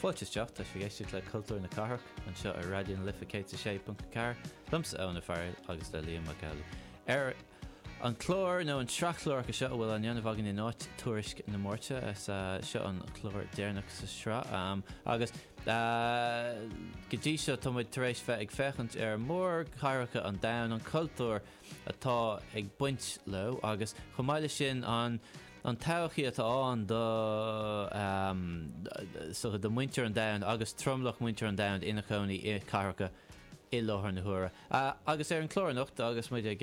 Fáilte isteach, tá sibh ag éisteacht le Cultúr na Cathrach anseo ar Raidió na Life 106.4, liomsa Eoin Ó Fearghail agus le Liam Mac Amhlaigh ar an chlár, nó an tsraith chláracha seo atá á ndéanamh againn in áit Tuairisc na Máirte, is é seo an clár deireanach sa sraith agus go dtí seo tá muid tar éis bheith ag féachaint ar mhórchathracha an domhain, an cultúr atá ag baint leo agus chomh maith leis sin. an todhchaí atá ann do mhuintir an domhain agus tromlach mhuintir an domhain ina chónaí i cathracha i láthair na huaire. Agus ar an chlár anocht, agus muid ag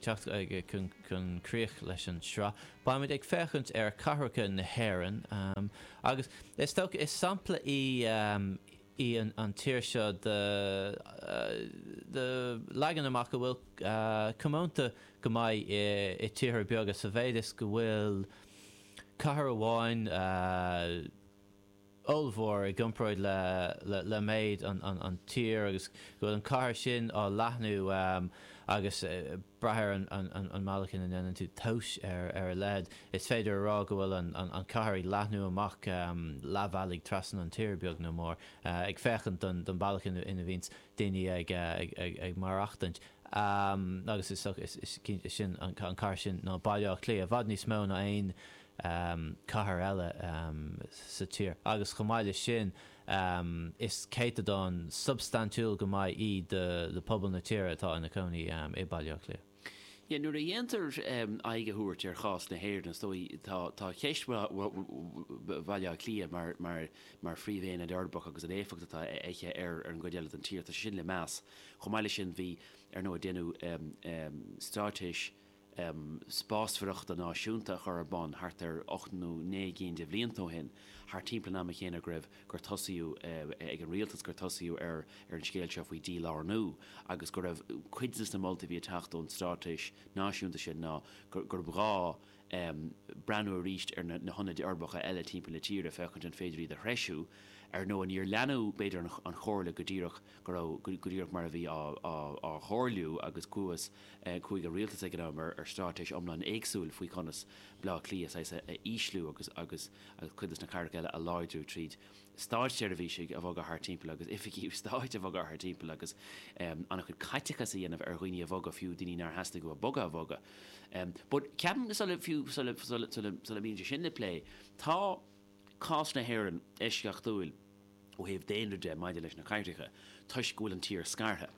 teacht chun críoch leis an tsraith, beidh muid ag féachaint ar chathracha na hÉireann agus is dócha, is sampla í, í an tír seo de leagan amach a bhfuil comónta go maith i tíortha beaga sa mhéid is go bhfuil cathair amháin ollmhór i gcomparáid le méid an tír agus go bhfuil an cathair sin á leathnú agus ag brath ar an mbealach ina ndéanann tú tomhas ar a leithéid. Is féidir a rá go bhfuil an cathair ag leathnú amach leathbhealaigh trasna an tír, beag nó mór, ag féachaint don bealach ina bhíonns daoine ag maireachtaint. Agus is dócha, is cinnte, is sin an cathair sin ná Baile Átha Cliath, i bhfad níos mó ná aon cathair eile sa tír. Agus chomh maith leis sin, is céatadán substaintiúil go maith í de phobal na tíre atá ina cónaí i Baile Átha Cliath. Sea, nuair a dhéantar aghaidh a thabhairt ar chás na hÉireann, is dóigh liom, tá ceist Bhaile Átha Cliath mar phríomhaonad uirbeach agus an éifeacht atá aici ar an gcuid eile den tír, tá sé sin le meas. Chomh maith leis sin, bhí, ar ndóigh, deineadh stráitéis spásmhaireachta náisiúnta a chur ar bun thart ar ocht nó naoi gcinn de bhlianta ó shin, thart timpeall an ama chéanna go raibh, gur tosaíodh ag an rialtas, gur tosaíodh ar an scéal seo faoi dhílárnú agus go raibh cuid de na moltaí a bhí ag teacht ón straitéis náisiúnta sin ná gurb ghá breathnú arís ar na hionaid uirbeacha eile timpeall na tíre féachaint an féidir iad a threisiú. Ar ndóigh, níor leanadh b'fhéidir an chomhairle go díreach go raibh go díreach mar a bhí á chomhairliú agus chuaigh chuaigh an rialtas ag an am ar stráitéis iomlán éagsúil faoi conas Bleá Cliath saghas a ísliú agus agus cuid de na cathracha eile a láidriú tríd státseirbhísigh a bhogadh thart timpeall agus oifigí stáit a bhogadh thart timpeall agus an-chuid caiteachas a dhéanamh ar dhaoine a bhogadh, fiú daoine nár theastaigh uathu bogadh a bhogadh. But ceapaim go sula, fiú sula, sula, sula, sula mbíonn sé sin le plé, tá cás na hÉireann eisceachtúil, ó thaobh daonra de maidir leis na cathracha toisc go bhfuil an tír scartha.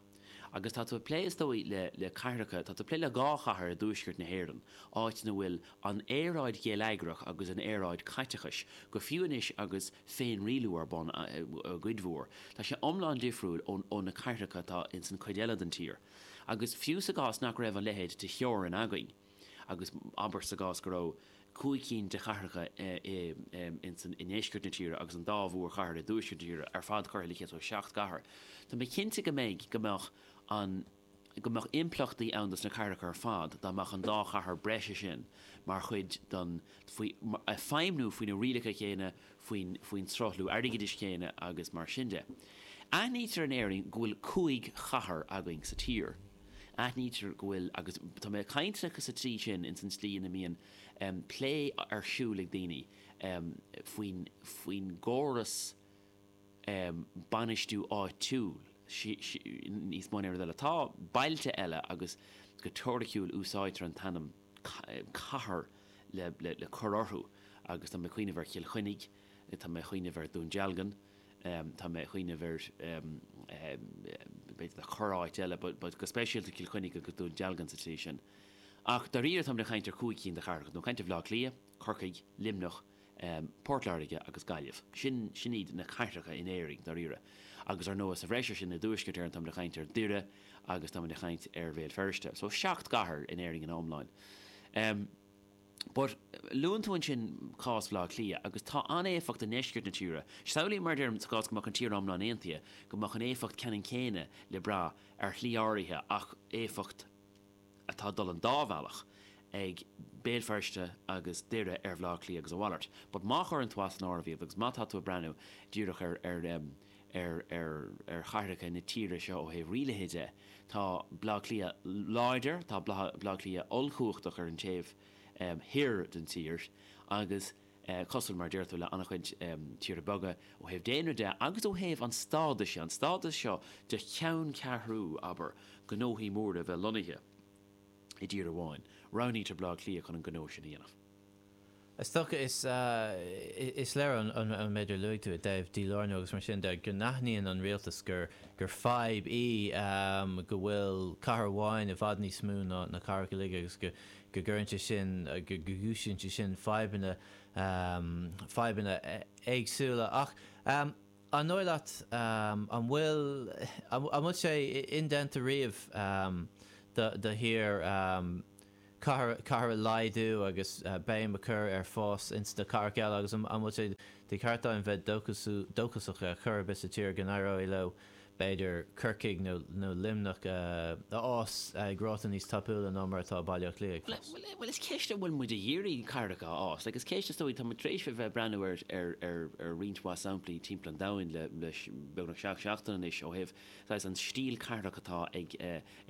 Agus tá tú ag plé, is dóigh, le, le cathracha, tá tú ag plé le dhá chathair i dtuaisceart na hÉireann, áit ina bhfuil an aeráid gheilleagrach agus an aeráid caiteachais, go fiú anois agus féinrialú ar bun, i gcuid mhór, tá sé iomlán difriúil ó, ó na cathracha atá ins an chuid eile den tír. Agus fiú sa gcás nach raibh a leithéid de theorainn againn, Agus abair sa gcás go raibh cúig chinn de chathracha i ndeisceart na tíre agus an dá mhórchathair i dtuaisceart na tíre ar fad curtha le chéile, so seacht gcathair, tá mé cinnte go mbeidh, go mbeadh an, go mbeadh impleachtaí ann dos na cathracha ar fad dá mbeadh an dá chathair breise sin mar chuid den, faoi, ag feidhmniú faoi na rialacha céanna, faoin sruthlú airgeadais céanna agus mar sin de. Aithnítear in Éirinn go bhfuil cúig chathair againn sa tír. Aithnítear go bhfuil, agus tá mé ag caint acu sa tslí sin, ins an tslí ina mbíonn plé ar siúl ag daoine faoin gcóras bainistiú áitiúil níos mó ná aon rud eile. Tá bailte eile agus go teoiriciúil úsáidtear an t-ainm. cathair le cur orthu agus tá mé ag cuimhneamh ar Chill Chainnigh, tá mé ag cuimhneamh ar Dún Dealgan, tá mé ag cuimhneamh ar, b'fhéidir le corráit eile but go speisialta Cill Chainnigh agus Dún Dealgan sa tslí sin. Ach dáiríre táimid ag caint ar chúig cinn de chathracha, táimid ag caint ar Bhaile Átha Cliath, Corcaigh, Luimneach, Port Láirge agus Gaillimh. Sin, sin iad na cathracha in Éirinn, dáiríre. Agus ar ndóigh, sa bhreis ar sin, i dTuaisceart Éireann, táimid ag caint ar Doire agus táimid ag caint ar Bhéal Feirste. So, seacht gcathair in Éirinn ina iomláine. But, luann tú ansin cás Bhaile Átha Cliath, agus tá an éifeacht i ndeisceart na tíre. Samhlaím, mar a deir tú, sa gcás go mbeadh an tír iomlán aontaithe, go mbeadh an éifeacht ceannann céanna le brath, ar shlí áirithe, ach éifeacht, atá ag dul an dá bhealach, ag Béal Feirste agus Doire, ar Bhleá Cliath agus a mhalairt. But má chuireann tú as an áireamh iad, agus má tá tú ag breathnú díreach ar, ar, ar, ar, ar chathracha na tíre seo ó thaobh rialaithe de, tá Bleá Cliath láidir, tá Bleá Cliath ollchumhachtach ar an taobh thoir den tír agus, cosúil, mar a deir tú, le an-chuid tíortha beaga, ó thaobh daonra de agus ó thaobh an stádais de, an stádas seo de cheanncheathrú, abair, gnóthaí móra bheith lonnaithe i dtír amháin. Roghnaítear Baile Átha Cliath chun an gnó sin a dhéanamh. Is dócha, is léir ón méid a luaigh tú i dtaobh dílárnú agus mar sin de, go n-aithníonn an rialtas gur fadhb í go bhfuil cathair amháin i bhfad níos mó ná na cathracha eile agus go gcuireann sé sin, go gcúisíonn sé sin fadhbanna, fadhbanna éagsúla. Ach an dóigh leat, an bhfuil, an bhfuil sé indéanta riamh do thír cathair a laghdú agus béim a chur ar fás ins na cathracha eile agus an bhfuil sé de cheart dúinn bheith dóchasach ar chor ar bith sa tír seo go n-éireoidh leo b'fhéidir Corcaigh nó Luimneach a fhás ag ráta níos tapúla ná mar atá Baile Átha Cliath ag fás. Bhuel, is í an cheist an bhfuil muid ag iarraidh cathracha a fhás, agus ceist is dóigh, tá muid tar éis a bheith ag breathnú ar roinnt mhaith samplaí timpeall an domhain le beagnach seacht seachtain anois ó thaobh saghas an stíl cathrach atá ag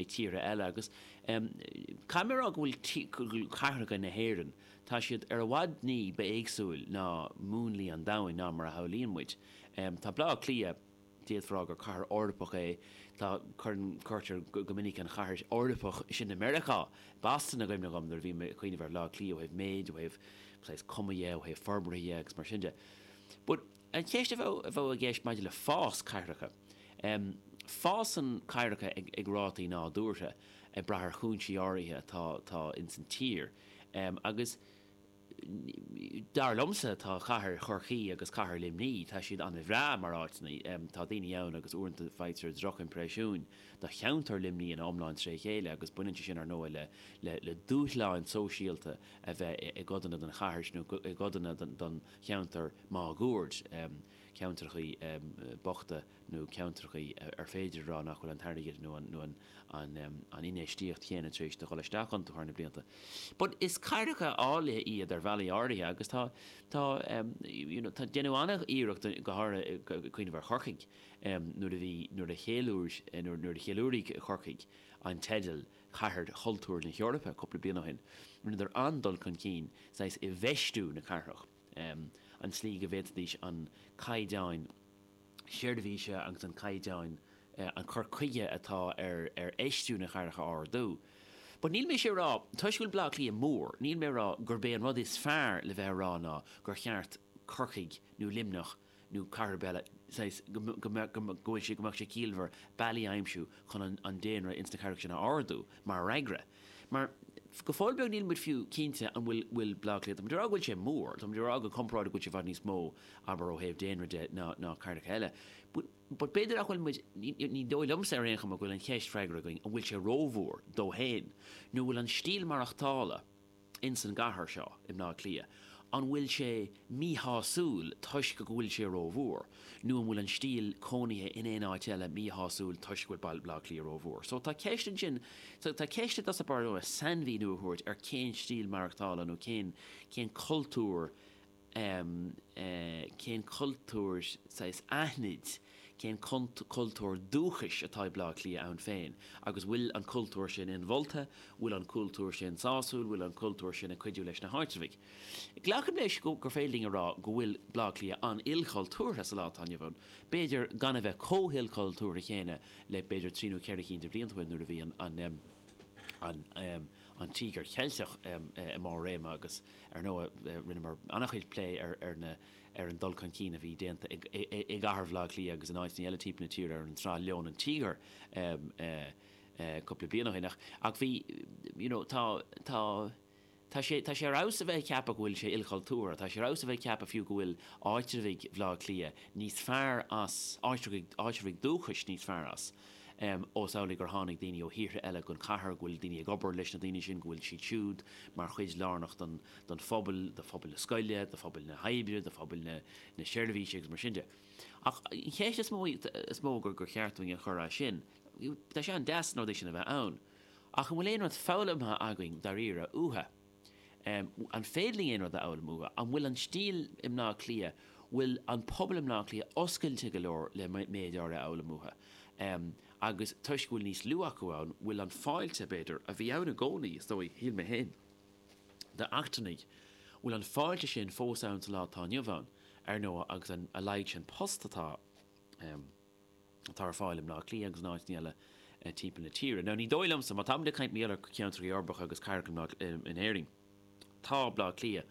tíortha eile agus caithfidh mé a rá go bhfuil cathracha na hÉireann, tá siad ar fad ní ba éagsúla ná múnlaí an domhain ná mar a shamhlaíonn muid. Tá Baile Átha Cliath. D'fhéadfá a rá gur cathair Eorpach é, tá, cuireann, cuirtear go minic an chathair Eorpach sin i Meiriceá, Boston, i gcuimhne dhom nuair a bhím ag cuimhneamh ar Bhaile Átha Cliath ó thaobh méid, ó thaobh saghas cuma dhe, ó thaobh forbartha dhe agus mar sin de. But an cheist a bheadh, a bheadh i gceist maidir le fás cathracha, em, fásann cathracha ag, ag rátaí nádúrtha ag brath ar chúinsí áirithe atá, atá in san tír, em, agus. Dar liomsa, tá cathair Chorcaí agus cathair Luimní, tá siad ana bhreá mar áiteanna. Tá na daoine ann agus uaireanta faightear droch impreisiúin de cheantar Luimní ina iomlán tré chéile agus baineann sé sin ar ndóigh le dúshláin sóisialta a bheith i gcodanna den chathair sin nó i gcodanna den cheantar máguaird. ceantrachaí bochta nó ceantrachaí ar féidir a rá nach bhfuil an t-airgead nó an infheistíocht chéanna tar éis a dhul isteach iontu thar na blianta. But is cathracha áille iad ar bhealaí áirithe agus tá, tá you know, déanadh an-iarracht go háirithe, ag cuimhneamh ar Chorcaigh nuair a bhí, nuair a cheiliúir, nuair a cheiliúraigh Corcaigh an teideal Cathair Chultúir na hEorpa cúpla bliain ó shin, rinneadar an-dul chun cinn saghas i bhfeistiú na cathrach. an tslí go bhféadfaidís an caighdeán seirbhíse agus an caighdeán an cur chuige atá ar ar fheistiú na gcathracha a ardú. But níl mise ag rá, toisc go bhfuil Bleá Cliath mór, níl mé ag rá gurb é an rud is fearr le bheith ag rá ná gur cheart Corcaigh nó Luimneach, nó cathair ar bith eile, saghas, go, go, go, go bhfuil sé, go mbeadh sé ciallmhar bealaí a aimsiú chun an, an daonra ins na cathracha sin a ardú mar fhreagra. Mar, go fóill beag níl muid fiú cinnte an bhfuil, bhfuil Bleá Cliath, tá muid ag rá go bhfuil sé mór, tá muid ag rá go comparáideach go bhfuil sé i bhfad níos mó, abair, ó thaobh daonra de ná, ná cathracha eile but, but b'fhéidir nach bhfuil muid, ní, ní dóigh liomsa ar aon chuma go bhfuil an cheist freagartha againn an bhfuil sé rómhór dó féin nó an bhfuil an stíl maireachtála, ins an gcathair seo, i mBleá Cliath, an bhfuil sé míshásúil toisc go bhfuil sé rómhór, nó an bhfuil an stíl cónaithe in aon áit eile míshásúil toisc go bhfuil Bleá Cliath rómhór? So, tá ceist ansin, so, tá ceist i dtosach báire sainmhíniú a thabhairt ar cén stíl maireachtála nó cén, cén cultúr a. um cén cultúr, saghas aithnid, cén cultúr dúchais atá ag Baile Átha Cliath ann féin agus bhfuil an cultúr sin inmholta, bhfuil an cultúr sin sásúil, bhfuil an cultúr sin ag cuidiú leis na háitreabhaigh. Glacaim leis gur féidir linn a rá go bhfuil Baile Átha Cliath an-ilchultúrtha sa lá atá inniu ann, b'fhéidir gan a bheith comh hilchultúrtha chéanna le b'fhéidir trí nó ceithre cinn de bhlianta ó shin nuair a bhí an an Tíogar Ceilteach i mbarr réime agus ar ndóigh rinneamar an-chuid plé ar an dul chun cinn a bhí déanta i gcathair Bhaile Átha Cliath agus in áiteanna eile timpeall na tíre ar an tsraith Leon an Tíogair cúpla bliain ó shin ach bhí, you know, tá, tá, tá sé, tá sé ar fheabhas a bheith ag ceapadh go bhfuil sé ilchultúrtha, tá sé ar fheabhas a bheith ag ceapadh fiú go bhfuil áitreabhaigh Bhaile Átha Cliath níos fearr as, áitreabhaigh, áitreabhaigh dúchais níos fearr as. ós amhlaidh gur tháinig daoine ó thíortha eile gon chathair, go bhfuil daoine ag obair leis na daoine sin, go bhfuil siad siúd mar chuid lárnach den, den phobal, de phobal na scoile, de phobal na hoibre, de phobal na, na seirbhíse agus mar sin de. Ach an cheist is mó, is mó gur, gur cheart dúinn a chur ansin, tá sé an-deas na rudaí sin a bheith ann, ach an bhfuil aon rud foghlamtha againn dáiríre uathu? an féidir linn aon rud a fhoghlaim uathu? An bhfuil an stíl i mBleá Cliath, bhfuil an pobal i mBleá Cliath oscailte go leor le méid áirithe a fhoghlaim uathu? Agus toisc go bhfuil níos lú acu ann, bhfuil an fáilte, b'fhéidir, a bhí ann i gcónaí, is dóigh, shíl mé féin, d'eachtrannaigh, bhfuil an fáilte sin fós ann sa lá atá inniu ann, ar ndóigh, agus a laghad sin post atá ann? atá ar fáil i mBleá Cliath agus in áiteanna eile timpeall na tíre. Now, ní dóigh liomsa, má tá muid ag caint mar gheall ar cheantrachaí uirbeacha agus cathracha in Éirinn, tá Bleá Cliath,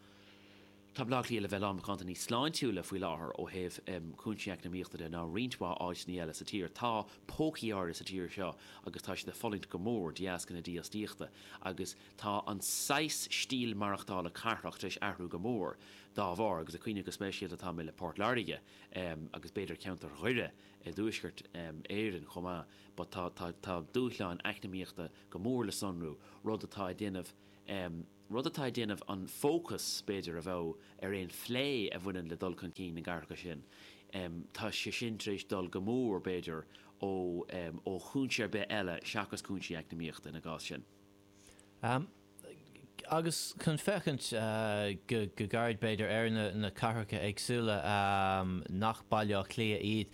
tá Bleá Cliath le bheith lán macánta níos sláintiúla faoi láthair ó thaobh cúinsí eacnamaíochta de ná roinnt mhaith áiteanna eile sa tír. Tá pócaí áirithe sa tír seo agus tá siad ag fulaingt go mór de dheasca na dífhostaíochta agus tá an saghas stíl maireachtála cathrach tar éis athrú go mór dá bharr agus ag cuimhneamh go speisialta atá mé ar Phort Láirge agus b'fhéidir ceantar Dhoire i dTuaisceart Éireann chomh maith, but tá dúshláin eacnamaíochta go mór le sonrú, rud atá ag déanamh rud atá ag déanamh an fócas, b'fhéidir, a bheadh ar aon phlé a bhaineann le dul chun cinn na gcathracha sin, tá sé sin tar éis dul go mór, b'fhéidir, ó chúinse ar bith eile seachas cúinsí eacnamaíochta ina gcás sin. Agus chun féachaint go gairid b'fhéidir ar na cathracha éagsúla nach Baile Átha Cliath iad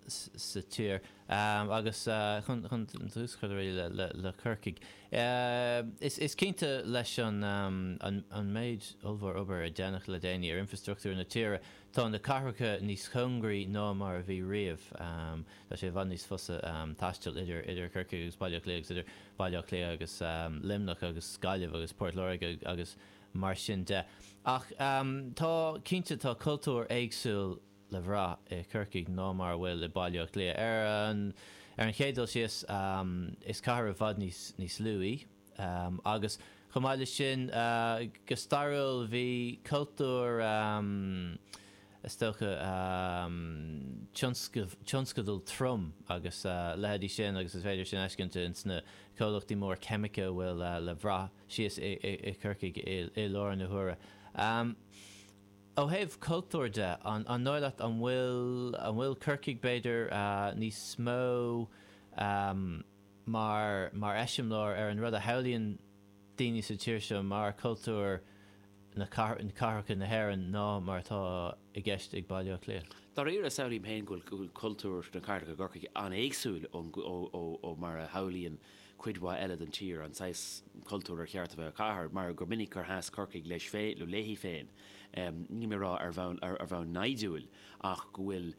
sa tír agus tús a chur le Corcaigh. Is cinnte leis an méid ollmhór obair a deineadh le déanaí ar infrastruchtúr na tíre, Tá na cathracha níos cóngaraí ná mar a bhí riamh. Tá sé i bhfad níos fusa taisteal idir Corcaigh agus Baile Átha Cliath agus idir Baile Átha Cliath agus Luimneach agus Gaillimh agus Port Láirge agus mar sin de. Ach tá, cinnte, tá cultúr éagsúil le bhrath i Corcaigh ná mar a bhfuil i Baile Átha Cliath. Ar an chéad dul síos, is cathair i bhfad níos lú í. Agus chomh maith leis sin, go stairiúil, bhí cultúr, is dócha, tionscadal trom agus a leithéidí sin agus is féidir sin a fheiscint in sna comhlachtaí móra ceimice a bhfuil le bhrath síos i Corcaigh i lár na huaire. Ó thaobh cultúir de, an ndóigh leat, an bhfuil Corcaigh, b'fhéidir, níos mó, mar mar eiseamláir ar an rud a shamhlaíonn daoine sa tír seo mar cultúr na cathracha na hÉireann ná mar atá i gceist ag Baile Átha Cliath. Dáiríre, samhlaím féin go bhfuil cultúr na cathrach i gCorcaigh an-éagsúil ó mar a shamhlaíonn cuid mhaith eile den tír an saghas cultúir ar cheart a bheith i gcathair, mar gur minic gur sheas Corcaigh leis féin nó léi féin, ní maith a rá ar bhonn inscniúil, ach go bhfuil.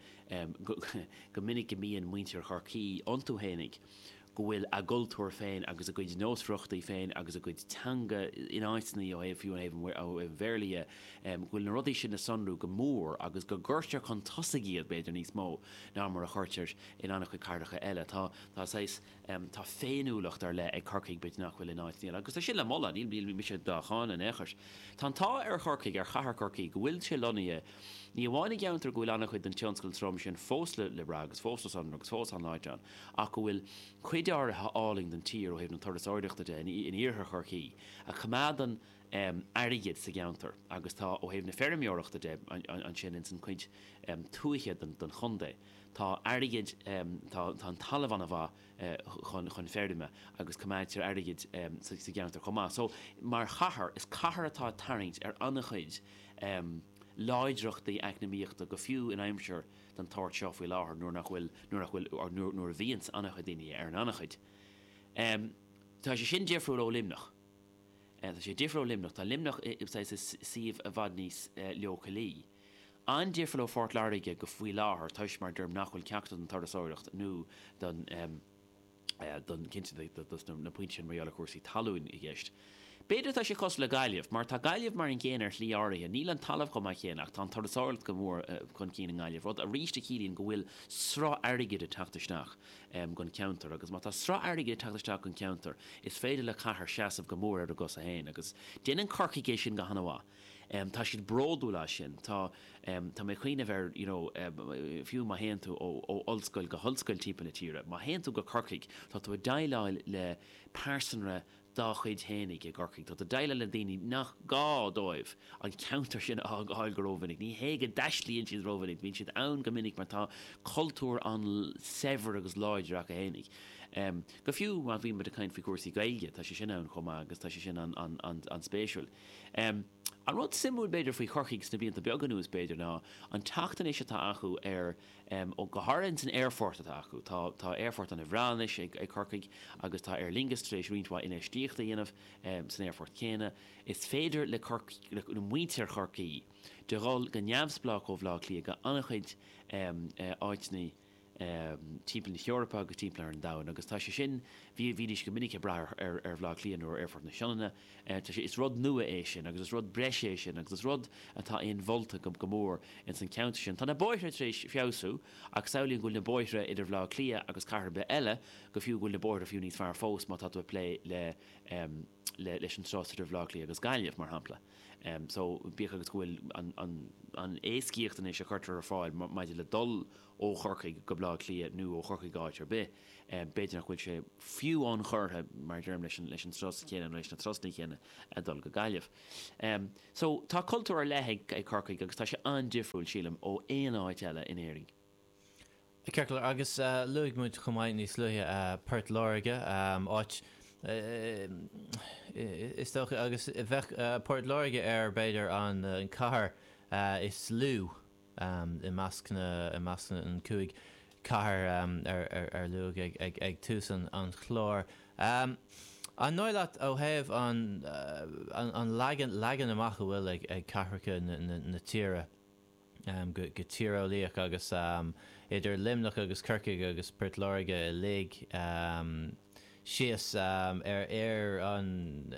go minic go mbíonn muintir Chorcaí iontu fhéinig, go bhfuil a gcultúr féin agus a gcuid nósmhaireachtaí féin agus a gcuid teanga in áiteanna, ó thaobh, fiú ó thaobh an Bhéarla dhe, go bhfuil na rudaí sin le sonrú go mór agus go gcuirtear chun tosaigh iad, b'fhéidir, níos mó ná mar a chuirtear in an-chuid cathracha eile. Tá saghas. Tá féiniúlacht ar leith ag Corcaigh, b'fhéidir nach bhfuil in áit, níl, agus tá sin le moladh, níl mise dá cháineadh in aon chor. Tá an t-ádh ar Chorcaigh, ar chathair Chorcaí, go bhfuil sé lonnaithe ní amháin i gceantar go bhfuil an-chuid den tionscal trom sin fós le brath agus fós le sonrú agus fós an-láidir ann, ach go bhfuil cuid áirithe álainn den tír, ó thaobh na turasóireachta de, in iarthar Chorcaí a choimeádann airgead sa gceantar agus tá, ó thaobh na feirmeoireachta de, ansin ins an chuid tuaithe den chontae. Tá airgead, tá an talamh ana mhaith chun feirme agus coimeádtar airgead sa gceantar chomh maith. So, mar chathair, is cathair atá ag tarraingt ar an-chuid láidreachtaí eacnamaíochta go fiú in aimsir den tsórt seo faoi láthair nuair nach bhfuil, nuair nach bhfuil, or nuair, nuair a bhíonns an-chuid daoine ar an anchaoi. Tá sé sin difriúil ó Luimneach. Tá sé difriúil ó Luimneach. Tá Luimneach, is é i suíomh i bhfad níos leochailí. An-difriúil ó Phort Láirge faoi láthair toisc, mar a deirim, nach bhfuil ceachtar den turasóireacht nó don, em, don, cinnte, dos na pointí sin mar gheall ar chúrsaí talúin i gceist. B'fhéidir atá sé cosúil le Gaillimh, mar tá Gaillimh mar an gcéanna ar shlí áirithe, níl an talamh chomh maith céanna ach tá an turasóireacht go mór chun cinn i nGaillimh, rud arís a chiallaíonn go bhfuil sruth airgid ag teacht isteach, em, gon cheantar agus má tá sruth airgid ag teacht isteach gon cheantar is féidir le cathair seasamh go mór ar a gcosa féin agus déanann Corcaigh é sin go han-mhaith. em tá siad bródúil as sin, tá em tá mé ag cuimhneamh ar you know em fiú má théann tú ó ó ollscoil go hollscoil timpeall na tíre, má théann tú go Corcaigh tá tú ag déileáil le pearsanra dá chuid fhéinig i gCorcaigh, tá tú ag déileáil le daoine nach gá dóibh an ceantar sin a fhágáil go rómhinic, ní hé go dtaistlíonn siad rómhinic, bíonn siad ann go minic mar tá cultúr an-saibhir agus láidir acu fhéinig. Em go fiú má bhíonn muid ag caint faoi chúrsaí Gaeilge tá sé sin ann chomh maith agus tá sé sin an an an an spéisiúil. An rud suimiúil b'fhéidir faoi Chorcaigh sna blianta beaga anuas b'fhéidir ná an teacht anois atá acu ar, go háirithe ins an aerfort atá acu, tá tá aerfort ana bhreá anois ag ag Corcaigh agus tá Aer Lingus tar éis roinnt mhaith infheistíochta a dhéanamh san aerfort céanna. Is féidir le Corc le le muintir Chorcaí, de dhul go neamhspleách ó Bhleá Cliath go an-chuid áiteanna, timpeall na hEorpa agus timpeall ar an domhan agus tá sé sin, bhí, bhídís go minic ag brath ar, ar Bhleá Cliath nó ar Aerfort na Sionainne, tá sé, is rud nua é sin agus is rud breise é sin agus is rud atá inmholta go, go mór ins an cheantar sin. Tá na bóithre tar éis feabhsú ach samhlaím go bhfuil na bóithre idir Bhleá Cliath agus cathair ar bith eile, go fiú, go bhfuil na bóithre fiú níos fearr fós má tá tú ag plé le, le, leis an turas idir Bhleá Cliath agus Gaillimh, mar shampla. So, bíodh agus go bhfuil an éascaíocht anois a chuirtear ar fáil maidir le dul ó Chorcaigh go Baile Átha Cliath nó ó Chorcaigh go áit ar bith, b'fhéidir nach bhfuil sé fiú ionchurtha, mar a deirim, leis an turas chéanna nó leis na turasanna céanna a dhul go Gaillimh. So, tá cultúr ar leith ag Corcaigh agus tá sé an-difriúil, sílim, ó aon áit eile in Éirinn. Ceart go leor agus luaigh muid chomh maith níos luaithe Port Láirge, áit is dócha agus bheadh Port Láirge ar, b'fhéidir, an chathair is lú i measc na, i measc na, an cúig chathair ar luadh ag tús an chláir. An dóigh leat ó thaobh an, an leagan, leagan amach a bhfuil ag cathracha na tíre, go tíreolaíoch agus idir Luimneach agus Corcaigh agus Port Láirge uilig síos ar ar an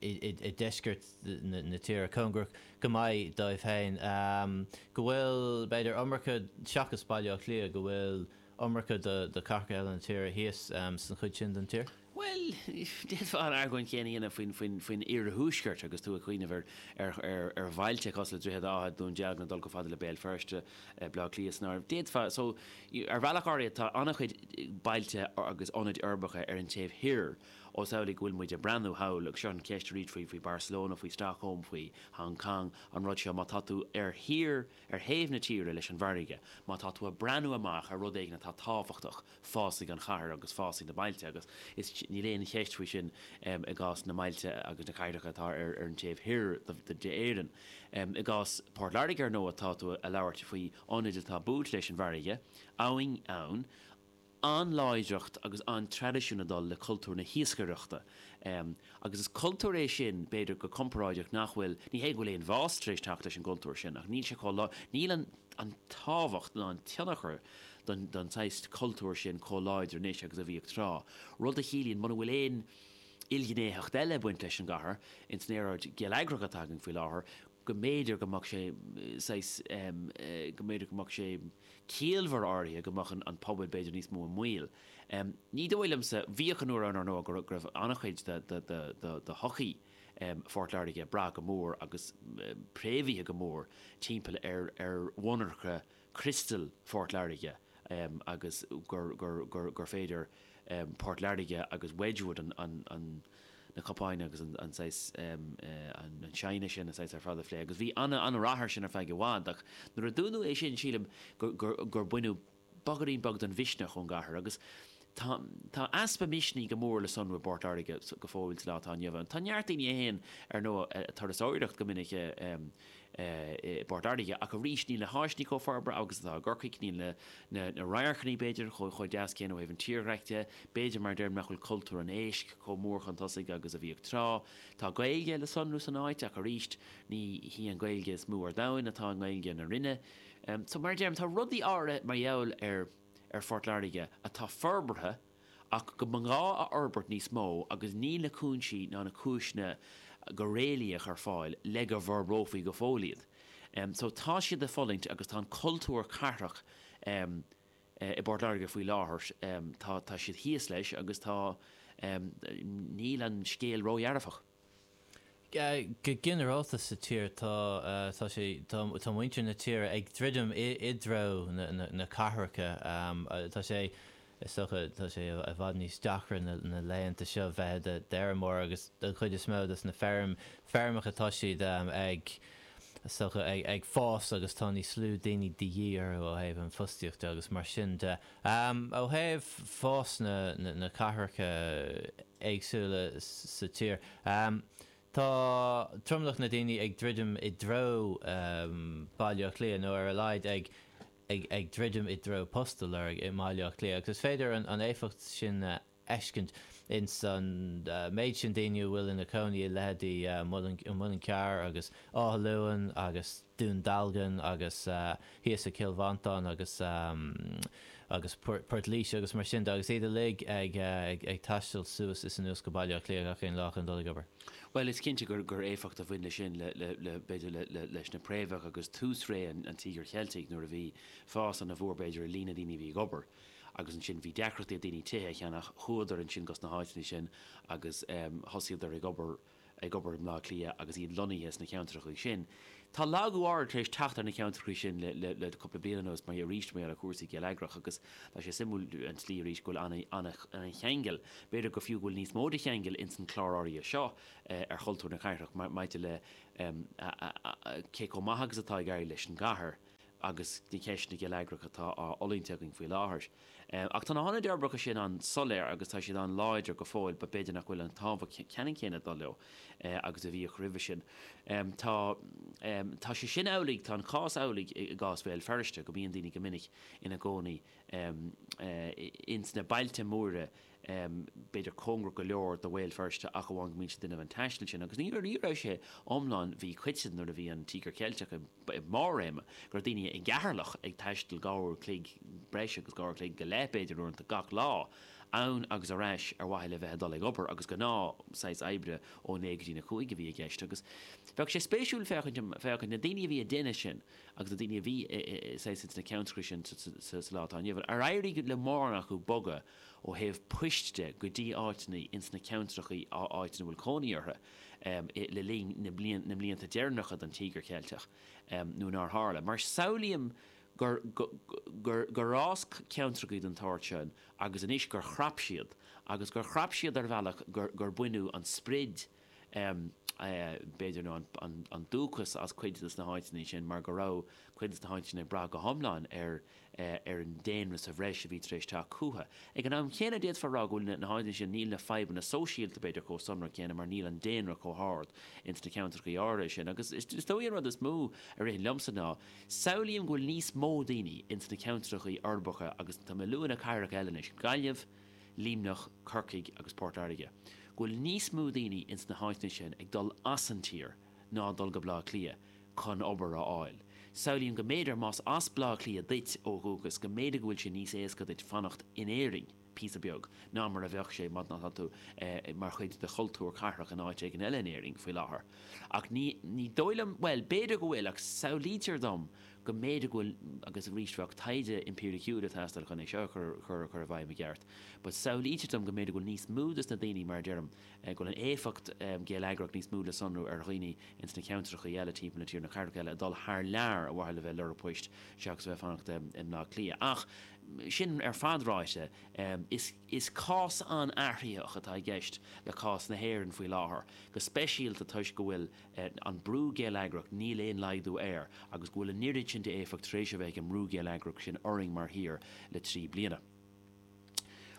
i deisceart na tíre, cóngarach go maith dóibh féin, go bhfuil b'fhéidir iomarca, seachas Baile Átha Cliath, go bhfuil iomarca do chathracha eile na tíre thíos san chuid sin den tír. Bhuel, d'fhéadfá an argóint chéanna a dhéanamh faoin oirthuaisceart agus tú ag cuimhneamh ar bhailte cosúil le Droichead Átha, Dún Dealgan, ag dul chomh fada le Béal Feirste, Baile Átha Cliath san áireamh. D'fhéadfá so. Ar bhealach áirithe tá an-chuid bailte agus ionaid uirbeacha ar an taobh thoir más amhlaidh go bhfuil muid ag breathnú thall, agus seo an cheist arís faoi Barcelona, faoi Stockholm, faoi Hong Cong, an rud seo, má tá tú ar thír, Ar thaobh na tíre leis an bhfarraige, má tá tú ag breathnú amach ar rud éigin atá tábhachtach, fásfaidh an chathair agus fásfaidh na bailte agus is, níl aon cheist faoi sin i gcás na mbailte agus na cathracha atá ar an taobh thoir d'Éirinn. I gcás Port Láirge, ar ndóigh, tá tú ag labhairt faoi ionad atá buailte leis an bhfarraige, abhainn ann, an-láidreacht agus an-traidisiún ag dul le cultúr na hiascaireachta agus is cultúr é sin, b'fhéidir, go comparáideach nach bhfuil, ní hé go bhfuil aon bhás tar éis teacht leis an gcultúr sin ach níl sé chomh, níl an tábhacht ná an tionchar don saghas cultúir sin chomh láidir anois agus a bhíodh tráth, rud a chiallaíonn muna bhfuil aon ilghnéitheacht eile ag baint leis an gcathair ins an aeráid gheilleagrach atá againn faoi láthair, go mb'fhéidir go mbeadh sé saghas, go mb'fhéidir go mbeadh sé ciallmhar áirithe go mbeadh an pobal b'fhéidir níos mó i mbaol. Ní dóigh liomsa, bhíodh an uair ann, ar ndóigh, go raibh an-chuid de shochaí Phort Láirge ag brath go mór agus préamhaithe go mór timpeall ar mhonarcha Criostal Phort Láirge agus gur féidir Port Láirge agus Wedgwood na cupáin agus an saghas china sin a saghas ar fad a phlé agus bhí an-rath ar sin ar feadh i bhfad ach nuair a dúnadh é sin sílim gur baineadh beagáinín beag den mhisneach ón gcathair agus Tá easpa misnigh go mór le sonrú i bPort Láirge go fóill sa lá atá inniu ann. Tá neart daoine a théann, ar ndóigh, ag turasóireacht go minic i bPort Láirge, ach arís níl na háiseanna chomh forbartha agus atá i gCorcaigh, níl na radharcanna, b'fhéidir, chomh deas céanna ó thaobh an tírdhreacha de, b'fhéidir, mar a deirim, nach bhfuil cultúr an éisc chomh mór chun tosaigh agus a bhíodh tráth. Tá Gaeilge le sonrú san áit, ach arís ní hí an Ghaeilge is mó ar domhain atá i nGaeilge na Rinne. So, mar a deirim, tá rudaí áirithe mar gheall ar. ar Phort Láirge atá forbartha ach go mba ghá a fhorbairt níos mó agus níl na cúinsí ná na cúiseanna go réalaíoch ar fáil le go bhforbrófaí go fóill iad. So tá siad ag fulaingt agus tá an cultúr cathrach i bPort Láirge faoi láthair, tá siad thíos leis agus tá, níl an scéal ródhearfach. Go ginearálta sa tír tá, tá sé, tá muintir na tíre ag druidim i dtreo na cathracha. Tá sé, is dócha, tá sé i bhfad níos deacra na laethanta seo bheith i do fheirmeoir agus don chuid is mó dos na feirmeacha tá siad ag, is dócha, ag fás agus tá níos lú daoine de dhíth orthu ó thaobh an fostaíocht de agus mar sin de. Ó thaobh fás na cathracha éagsúla sa tír, tá tromlach na daoine ag druidim i dtreo Bhaile Átha Cliath, nó ar a laghad ag druidim i dtreo post a lorg i mBaile Átha Cliath, agus is féidir an éifeacht sin a. fheiscint ins an méid sin daoine a bhfuil ina gcónaí i leithéidí Muileann Cearr agus Áth Luain agus Dún Dealgan agus thíos i gCill Mhantáin agus agus Port Laoise agus mar sin de agus iad uilig ag ag taisteal suas is anuas go Baile Átha Cliath gach aon lá chun dul ag obair. Bhuel is cinnte gur gur éifeacht a bhain le sin le le le b'fhéidir le le leis na préamhacha agus tús ré an Tíogair Cheiltigh nuair a bhí fás ana mhór b'fhéidir i líon na daoine a bhí ag obair Agus ansin bhí deacrachtaí ag daoine tithe a cheannach. Chuadar ansin go sna háiteanna sin agus thosaíodar ag obair, ag obair i mBleá Cliath agus iad lonnaithe sna ceantracha sin. Tá lagú tar éis teacht ar na ceantracha sin le, le, le cúpla bliain anuas, mar arís de bharr cúrsaí geilleagracha agus tá sé suimiúil an tslí arís go bhfuil an, an, ana-cheangal, b'fhéidir go fiú go bhfuil níos mó de cheangal ins an clár áirithe seo ar chultúr na cathrach mar, maidir le, a, a, a, a, cé chomh maith agus atá ag éirí leis an gcathair agus na ceisteanna geilleagracha atá á bhfulaingt againn faoi láthair. Ach tá na hionaid uirbeacha sin an-soiléir agus tá siad an-láidir go fóill, b'fhéidir nach bhfuil an tábhacht ceannann céanna ag dul leo agus a bhíodh roimhe sin. Tá tá sé sin amhlaidh, tá an cás amhlaidh i gcás Bhéal Feirste, go mbíonn daoine go minic ina gcónaí ins na bailte móra, b'fhéidir cóngarach go leor do Bhéal Feirste ach amháin go mbíonn siad ag déanamh an taistil sin agus ní raibh sé iomlán, bhí cuid de, nuair a bhí an Tíogar Ceilteach i mbarr a réime, go raibh daoine i gCeatharlach ag taisteal dhá uair a chloig, breis agus dhá uair a chloig go leith b'fhéidir uaireanta, gach lá, ann agus ar ais ar mhaithe le bheith ag dul ag obair agus gnáth saghas oibre ó naoi go dtí a cúig a bhí i gceist agus bheadh sé spéisiúil féachaint, féachaint, na daoine a bhí ag déanamh sin agus na daoine a bhí saghas ins na ceantracha sin sa lá atá inniu ann, ar éirigh le mórán acu bogadh? ó thaobh poist de, go dtí áiteanna ins na ceantrachaí, na háiteanna a bhfuil cónaí orthu, le linn na mblianta deireanacha den Tíogar Ceilteach, nó nár tharla. Mar samhlaím gur fhás ceantrachaí den tsórt sin agus anois gur chrap siad, agus gur chrap siad ar bhealach gur baineadh an sprid, b'fhéidir, nó an dúchas as cuid des na háiteanna sin mar go raibh cuid des na háiteanna ag brath go hiomlán ar an daonra sa bhreis a bhí tar éis teacht chucu. Ag an am céanna, d'fhéadfá a rá go bhfuil na háiteanna sin, níl na fadhbanna sóisialta, b'fhéidir, chomh sonrach céanna mar níl an daonra chomh hard ins na ceantrachaí áirithe sin. Agus is dóigh an rud is mó a ritheann liomsa ná, samhlaím go bhfuil níos mó daoine ins na ceantrachaí uirbeacha agus tá mé ag lua na cathracha eile anois, Gaillimh, Luimneach, Corcaigh agus Port Láirge, go bhfuil níos mó daoine ins na háiteanna sin ag dul as an tír ná ag dul go Baile Átha Cliath chun obair a fháil. Samhlaím go mb'fhéidir más as Baile Átha Cliath duit ó dhúchas, go mb'fhéidir go bhfuil sé níos éasca duit fanacht in Éirinn píosa beag ná mar a bheadh sé má tá tú mar chuid de chultúr cathrach in áit éigin eile in Éirinn faoi láthair. Ach ní dóigh liom, bhuel, b'fhéidir go bhfuil, ach samhlaítear dom go mb'fhéidir go bhfuil, agus arís bheadh taighde impíriciúil ag teastáil chun é seo a chur i bhfeidhm i gceart, but samhlaítear dom go mb'fhéidir go bhfuil níos mó de na daoine, mar a deirim, go bhfuil an éifeacht gheilleagrach níos mó le sonrú ar dhaoine ins na ceantrachaí eile timpeall na tíre, na cathracha eile, ag dul thar lear ar mhaithe le bheith ag lorg poist seachas a bheith ag fanacht i mBleá Cliath. Ach sin ar fad ráite, is cás an-athraitheach atá i gceist le cás na hÉireann faoi láthair, go speisialta toisc go bhfuil, an brú geilleagrach, níl aon laghdú air, agus go bhfuil an oiread sin d'éifeacht tar éis a bheith ag an mbrú geilleagrach sin orainn mar thír le trí bliana.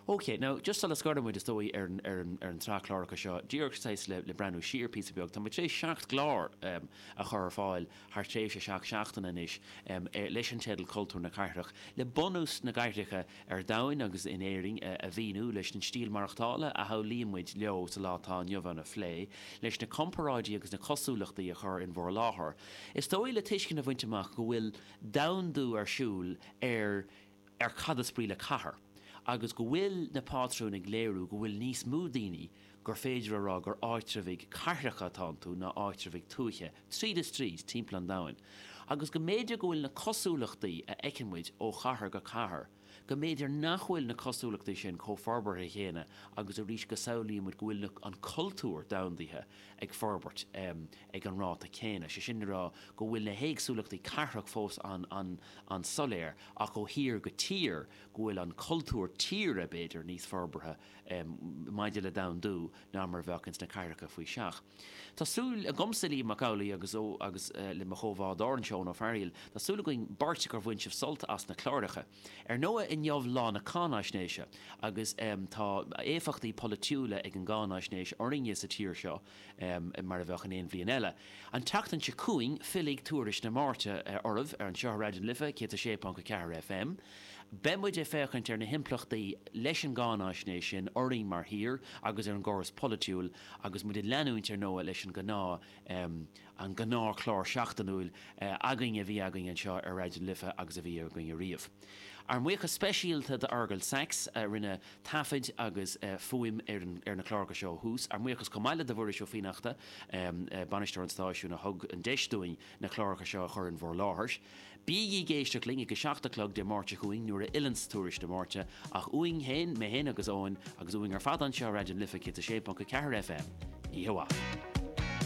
OK, now, just sula scoirfidh muid, is dóigh, ar an, ar an, ar an tsraith cláracha seo, díreach saghas le, le breathnú siar píosa beag, tá muid tar éis seacht gclár a chur ar fáil thar thréimhse seacht seachtaine anois, leis an teideal Cultúr na Cathrach, le bunús na gcathracha ar domhain agus in Éirinn a mhíniú, leis an stíl mhaireachtála a shamhlaíonn muid leo sa lá atá inniu ann a phlé, leis na comparáidí agus na cosúlachtaí a chur in bhur láthair, is dóigh, le tuiscint a bhaint amach go bhfuil domhandú ar siúl ar ar cad is brí le cathair agus go bhfuil na pátrúin ag léiriú go bhfuil níos mó daoine gur féidir a rá gur áitreabhaigh cathracha atá iontu ná áitreabhaigh tuaithe. tríd is tríd, timpeall an domhain, agus go mb'fhéidir go bhfuil na cosúlachtaí a fheiceann muid ó chathair go cathair, go mb'fhéidir nach bhfuil na cosúlachtaí sin chomh forbartha chéanna agus arís go samhlaíonn muid go bhfuil na, an cultúr domhandaithe ag forbairt ag an ráta céanna, sé sin le rá go bhfuil na héagsúlachtaí cathrach fós an-soiléir ach ó thír go tír go bhfuil an cultúr tíre, b'fhéidir, níos forbartha. maidir le domhandú ná mar a bheadh ins na cathracha faoi seach. Tá súil agamsa, Liam Mac Amhlaigh, agus le mo chomhbhádóir anseo, Eoin Ó Fearaíl, tá súil againn beirt gur bhain sibh sult as na cláracha. Ar ndóigh, inniu lá na cáináisnéise agus tá éifeachtaí polaitiúla ag an gcáináisnéis orainne sa tír seo mar a bheadh in aon bhliain eile. An tseachtain seo chugainn fillfidh Tuairisc na Máirte oraibh ar ais anseo ar Raidió na Life 106.4 FM, Beidh muid ag féachaint ar na himpleachtaí leis an gcáináisnéis sin orainn mar thír agus ar an gcóras polaitiúil agus muid ag leanúint ar ndóigh leis an gnáth an gnáth chlár seachtainiúil againn a bhí againn anseo ar Raidió na Life agus a bhí againn ariamh. Ár mbuíochas speisialta do Fheargal Sachs a rinne taifead agus fuaim ar na cláracha seo ó thús. Ár mbuíochas chomh maith le do Mhuiris Ó Fiannachta, Bainisteoir an Stáisiúin a thug an deis dúinn na cláracha seo a chur in bhur láthair. Bígí ag éisteacht linn ag a seacht a chlog Dé Máirt seo chugainn nuair a fhilleanns Tuairisc na Máirte, ach uainn féin, mé féin agus Eoin, agus uainn ar fad anseo i Raidió na Life 106.4 FM, oíche mhaith.